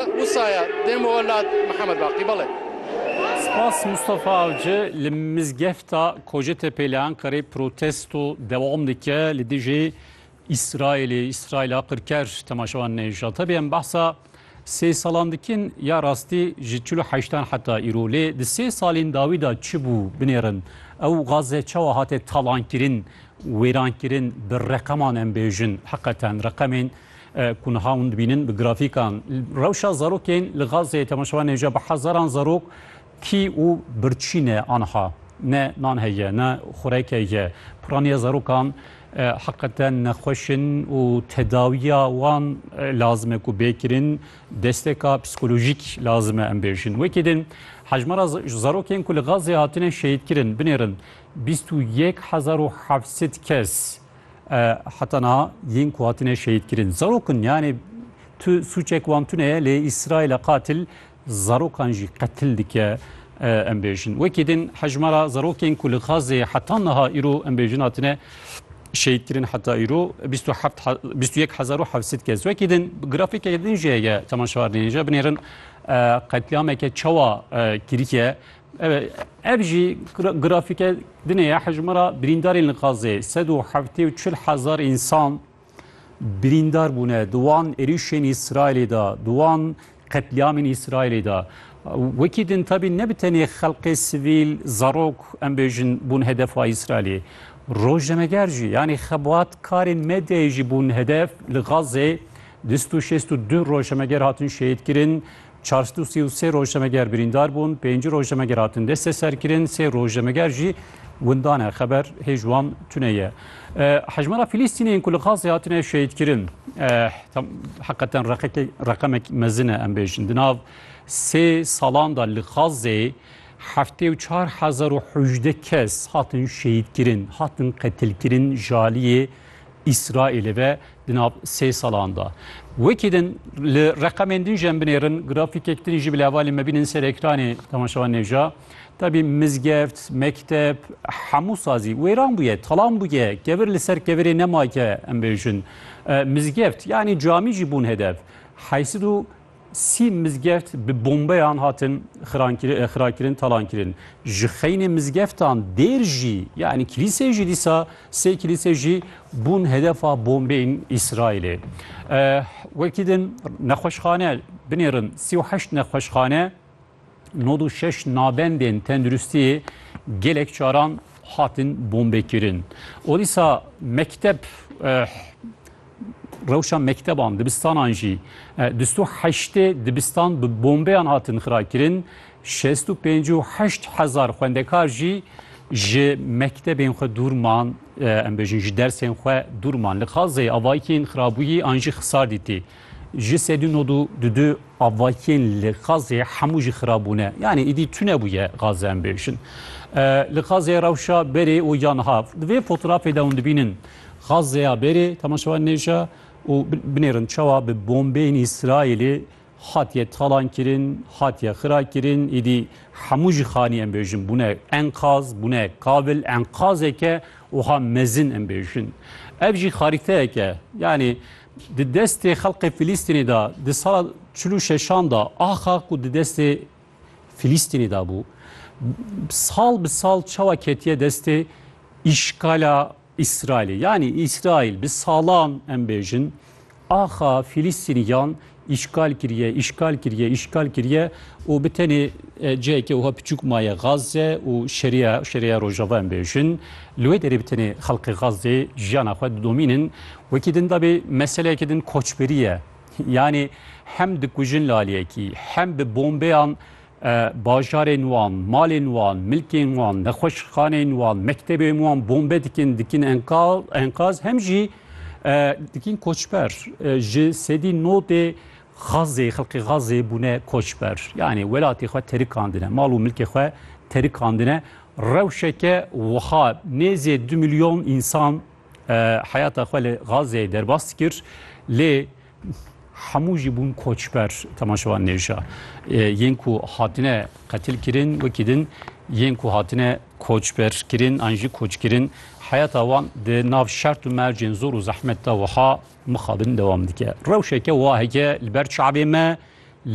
Wusaya dê min we lat Mihemed Baqî bale. Spas Mustafa Avci li mizgefta Kocetepe li Enqerê protesto dewam dike li dijî Îsraîlê, Îsraîla qirker temaşevan nehêşa. Tevî em behsa sê salan dikin ya rastî ji çil û heştan heta îro. Lê di sê salên dawî de çi bû binêrin? Ew Gaze çawa hate talankirin, wêrankirin? Bi reqeman em bêjin heqeten reqemên Ku niha hûn dibînin bi grafîkan rewşa zarokên li Gazeyê temaşevan nêja bi hezaran zarok tî û birçî ne aniha ne nan heye ne xureke ye. Piraniya zarokan heqeten nexweş in û tedawiya wan lazim e ku bê kirin desteka psîkolojîk lazim e em bêjin. Wekî din hejmara zarokên ku li Gazeyê hatine şehîdkirin binêrin bîst û yek hezar û heft sed kes. Heta niha yên ku hatine şehîdkirin zarok in yanê tu sûçek wan tune ye lê Îsraîla qatil zarokan jî qetil dike em bêjin. Wekî din hejmara zarokên ku li Xazê heta niha îro em bêjin hatine şehîdkirin heta îro 21700 kes. Wekî din grafîkeke din jê ye temaşewarnê jê binêrin qetlîameke çawa kirîye Eve, ev jî grafîke dinê ya hejmara birîndarên li Xazê. Sed û heftê û çil hezar însan birîndar bûne di wan êrîşên Îsraîlê de, di wan qetlîamên Îsraîlê de. Wekî din tabî ne bi tenê xelkê sivîl, zarok em bêjin bûn hedefa Îsraîlê. Rojnameger jî yanî xebatkarên medyayê jî bûn hedef li Xazê. Dû sed û şêst û du rojnameger hatin şehîdkirin. Çar sed û sê û sê rojnameger birîndar bûn, pêncî rojnameger hatin desteserkirin, sê rojnameger jî windan e. Xeber hê ji wan tune ye. Hejmara Filîstînê yên ku li Xazê hatine şehîdkirin heqeten reqemek mezin e em bêjin. Di nav sê salan de li Xazê heftê û çar hezar û hejde kes hatin şehîdkirin, hatin qetilkirin jaliyê Îsraîlê ve Di nav sê salan de wekî din li reqemên din jî em binêrin grafîkek din jî bi levalê me bînin ser ekranê temaşevan nêja. Tabî mizgeft, mekteb, hemû sazî wêran bûye, talan bûye, kevir li ser kevirê nemake em bêjin. Mizgeft yanî camî jî bûn hedef. Heysid û Sî mizgeft bi bombeyan hatin xirakirin, talankirin. Ji xeynê mizgeftan dêr jî, yanî kilîsê jî dîsa sê kilîsê jî bûn hedefa bombeyên Îsraîlê. Wekî din nexweşxane binêrin sî û heşt nexweşxane Nod û şeş nabendên tenduristiyê gelek caran hatin bombekirin. O dîsa mekteb rewşa mekteban, dibistanan jî bîst û heştê dibistan bi bombeyan hatin xirakirin, şêst û pênc û heşt hezar xwendekar jî ji mektebên xwe dûr man, em bêjin ji dersên xwe dûr man. Li Xazeyê avayekî yên xirabûyî an jî xisar dîtî. Ji sedî nod û du du avakiyên li Xazê hemû jî xirab bûne. Yanî îdî tunebûye Xaze em bêjin. Li Xazê rewşa berê û ya niha. Di vê fotorafê de hûn dibînin Xazeya berê temaşevan nêja û binêrin çawa bi bombeyên Îsraîlê hatiye talankirin, hatiye xirakirin. Îdî hemû jî xanî em bêjin bûne enqaz, bûne kabil. Enqazeke wiha mezin em bêjin. Ev jî xarîteyeke yanî Di destê xelkê Filîstînê de di sala çil û şeşan de axa ku di destê Filîstînê de bû sal bi sal çawa ketiye destê îşkala İsrailê. Yani İsrail bi salan em bêjin axa Filîstîniyan Îşgal kiriye, îşgal kiriye, îşgal kiriye û bi tenê cihekê wiha piçûk maye Gazze û Şeriya, Şeriya Rojava em bêjin. Li wê derê bi tenê xelkê Gazzê jiyana xwe didomînin. Wekî din dabê meseleyekî din koçberî ye. Yanî hem dikujin laliyekî, hem bi bombeyan Bajarên wan, malên wan, milkên wan, nexweşxaneyên wan, mektebên wan bombe dikin, dikin enkaz, enkaz hem jî e, dikin koçber. E, ji sedî nodê xazê, xelkê xazê bûne koçber. Yani welatê xwe terikandine, mal û milkê xwe terikandine. Rewşeke wiha nêzê du milyon insan e, heyata xwe li xazê derbas kir. Lê Hemû jî bûn koçber temaşevan nêrîşa. Yên ku hatine qetilkirin wekî din yên ku hatine koçberkirin an jî koçkirin heyata wan di nav şert û mercên zor û zehmet de wiha mixabin dewam dike. Rewşeke waheke li ber çavê me